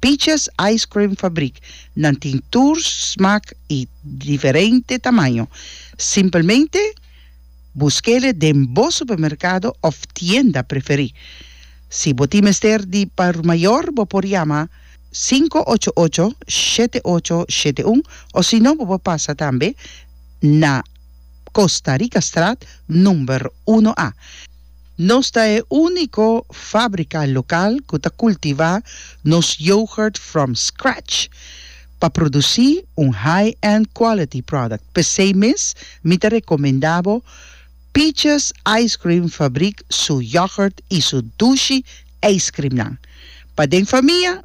Peaches Ice Cream Fabrik, nan tin tur smak i diferente tamaño. Simpelmente busk'e den bo supermerkado òf tienda preferí. Si bo tin mester di por mayor bo por yama sinku ocho ocho shete ocho shete un osino bo por pasa tambe na. Costa Rica Straat number uno A. Nos ta e unico fabrica local cu ta cultiva nos yoghurt from scratch pa produci un high-end quality product. Pesey mes mi ta recomenda bo Peaches Ice Cream Fabriek su yoghurt y su dushi ijscreamnan. Pa den famia.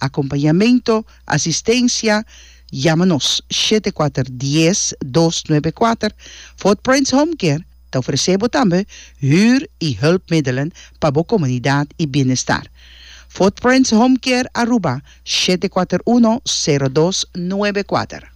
Acompañamento, Asistencia, Yama nos shete kuater dies dos nuebe kuater. Footprints Home Care ta ofrece bo tambe huur y hulpmiddelen pa bo comunidad y bienestar. Footprints Home Care Aruba shete kuater uno sero dos nuebe kuater.